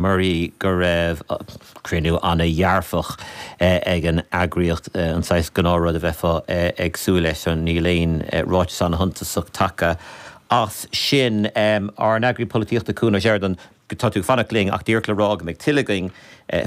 Muirí go raibh cruinniú an-dhearfach ag an eagraíocht, an saghas gnáthrud a bheifeá ag súil leis, so níl aon ráiteas an-shuntasach tagtha as sin. Ár nEagraí Polaitíochta Cuan Ó Seireadáin, tá tú ag fanacht linn ach díreach le rá go mbeidh tuilleadh againn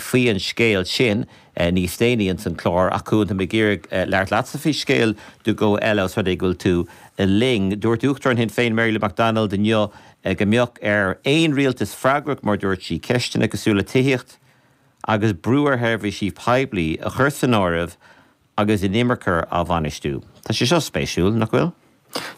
faoi an scéal sin níos déanaí ins an chlár. Ach a Chuain, tá mé ag iarraidh labhairt leatsa faoi scéal iomlán eile, ós rud é go bhfuil tú linn. Dúirt Uachtarán Shinn Féin, Mary Lou McDonald, inniu, go mbeadh ar aon rialtas freagrach mar a dúirt sí ceisteanna cosúil le tithíocht agus brú ar sheirbhísí poiblí a chur san áireamh agus inimirce á bhainistiú. Tá sé seo spéisiúil, nach bhfuil?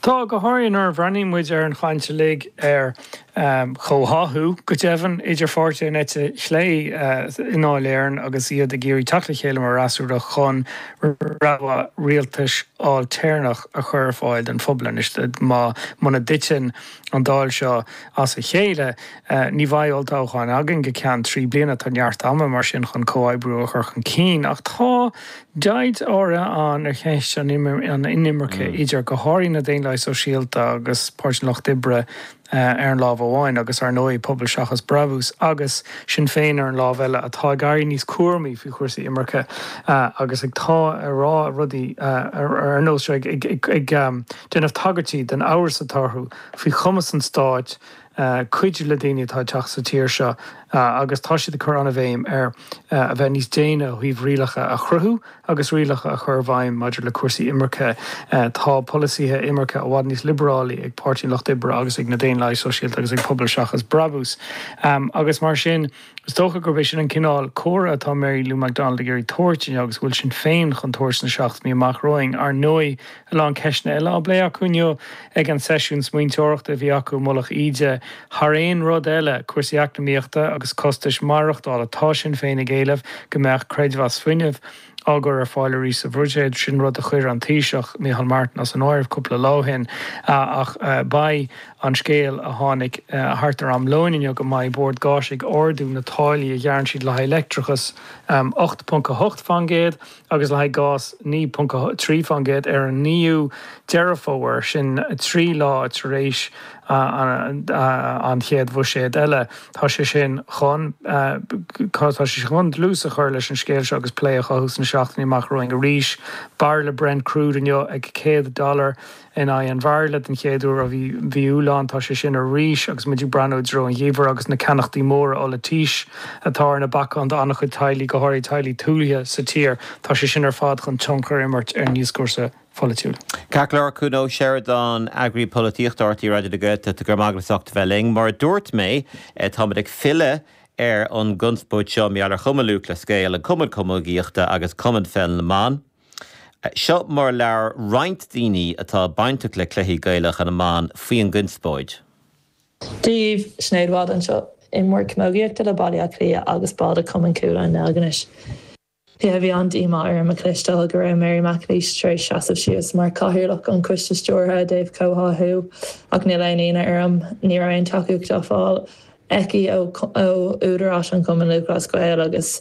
Tá, go háirithe nuair a bhreathnaíonn muid ar an chaint uilig ar chomhtháthú, go deimhin, idir pháirtithe na heite chlé i nDáil Éireann agus iad ag iarraidh teacht le chéile mar fhreasúra chun rogha rialtais ailtéarnach a chur ar fáil don phobal anois má muna dtiteann an Dáil seo as a chéile. Ní bheidh olltoghchán againn go ceann trí bliana. Tá neart ama, mar sin, chun comhoibriú a chur chun cinn. Ach tá deighilt áirithe ann ar cheist an inimirce idir, go háirithe, na Daonlathaithe Sóisialta agus Páirtí an Lucht Oibre ar an lámh amháin agus, ar ndóigh, Pobal Seachas Brabús agus Sinn Féin ar an lámh eile, atá ag éirí níos cúramaí faoi chúrsaí imirce agus atá ag rá rudaí ar nós seo ag déanamh tagairtí den amhras atá orthu faoi chumas an stáit cuidiú le daoine atá ag teacht sa tír seo agus tá siad ag cur an-bhéim ar a bheith níos déine ó thaobh rialacha a chruthú agus rialacha a chur i bhfeidhm maidir le cúrsaí imirce. Tá polasaithe imirce i bhfad níos liobarálaí ag Páirtí an Lucht Oibre agus ag na Daonlathaithe Sóisialta agus ag Pobal Seachas Brabús agus mar sin, Is dócha gurb é sin an cineál comhartha atá Mary Lou McDonald ag iarraidh tabhairt inniu agus a bhfuil Sinn Féin chun tabhairt sna seachtainí amach romhainn. Ar ndóigh, a lán ceisteanna eile á bplé acu inniu ag an seisiún smaointeoireachta a bhí acu i Mullach Íde. Thar aon rud eile, cúrsaí eacnamaíochta agus costas maireachtála. Tá Sinn Féin ag éileamh go mbeadh creidmheas fuinnimh. á chur ar fáil arís sa Bhuiséad. Sin rud a chuir an Taoiseach, Micheál Martin as an áireamh cúpla lá ó shin ach beidh an scéal a tháinig thart ar am lóin inniu go mbeidh Bord Gáis ag ardú na táillí a ghearrann siad le haghaidh leictreachais 8.8 faoin gcéad agus le haghaidh gás 9.3 faoin gcéad ar an 9ú Deireadh Fómhair, sin trí lá tar éis. an chéad bhuiséad eile. Tá sé sin chun tá sé chun dlús a chur leis an scéal seo agus plé a chothú sna seachtainí amach romhainn. Arís, bairille Brent Crude inniu ag céad dollar in aghaidh an bhairille den chéad uair ó mhí Iúil anall. Tá sé sin arís agus muid ag breathnú i dtreo an gheimhridh agus na ceannachtaí móra ola teasa atá ar na bacáin do an-chuid teaghlaigh, go háirithe teaghlaigh tuaithe sa tír. Tá sé sin ar fad chun tionchar a imirt ar an dioscúrsa na. pholaitiúil. Ceart go leor, Cuan Ó Seireadáin, Eagraí Polaitíochta RTÉ Raidió na Gaeltachta, go raibh maith agat as ucht a bheith linn. Mar a dúirt mé, táimid ag filleadh ar an gconspóid seo i measc Chumann Lúthchleas Gael, an Cumann Camógaíochta agus Cumann Pheil na mBan. Seo mar a labhair roinnt daoine atá bainteach le cluichí Gaelacha na mban faoin gconspóid. Seo daoibh Sinéad Wylde anseo imreoir camógaíochta le Baile Átha Cliath agus ball de Chumann Cuala i nDeilginis. Bhí an-díomá orm a chloisteáil go raibh Mary McAleese tar éis seasamh síos mar Chathaoirleach an Choiste Stiúrtha i dtaobh comhtháthú, ach níl aon ionadh orm. Ní raibh aon tacaíocht á fáil aici ó údaráis an Chumainn Lúthchleas Gael agus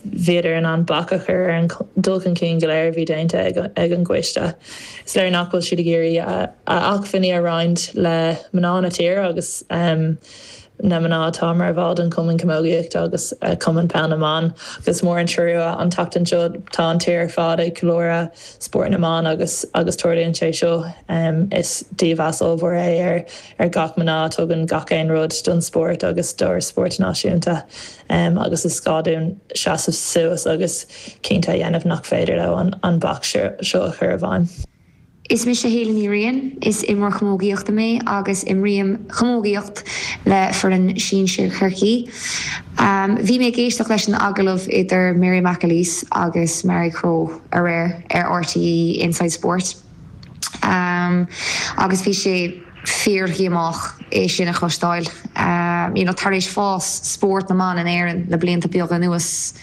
bhíodar in ann bac a chur ar an dul chun cinn go léir a bhí déanta ag an gcoiste. Is léir nach bhfuil siad ag iarraidh a acmhainní a roinnt le mná na tíre agus na mná atá mar bhall den Chumann Camógaíochta agus Cumann Peil na mBan agus is mór an trua an tseachtain seo tá an tír ar fad ag ceiliúradh spórt na mban agus agus tarlaíonn sé seo. Is dímheas ollmhór é ar ar gach mná a tugann gach aon rud don spórt agus dár spórt náisiúnta agus is gá dúinn seasamh suas agus cinnte a dhéanamh nach féidir leo an bac seo a chur i bhfeidhm. Is mise Hayley Ní Riain, is imreoir camógaíochta mé agus imrím camógaíocht le foireann sinsir Chorcaí. Bhí mé ag éisteacht leis an agallamh idir Mary McAleese agus Marie Crowe aréir ar RTÉ Inside Sport agus bhí sé fíordhíomách é sin a chloisteáil. Tar éis fás spórt na mban in Éirinn le blianta beaga anuas,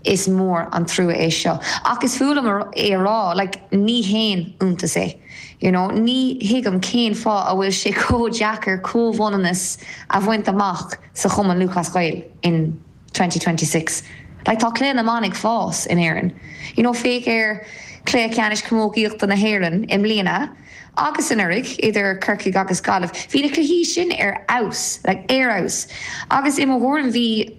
Is mór an trua é seo, ach is fuath liom é a rá, like, ní haon iontas é, you know. Ní thuigim cén fáth a bhfuil sé chomh deacair comhionannas a bhaint amach sa Chumann Lúthchleas Gael in twenty twenty six. Like, tá cluiche na mban ag fás in Éirinn, you know, féach ar Cluiche Ceannais Camógaíochta na hÉireann i mbliana agus anuraidh idir Corcaigh agus Gaillimh, bhí na cluichí sin ar fheabhas, like, ar fheabhas. Agus i mo thuairim, bhí.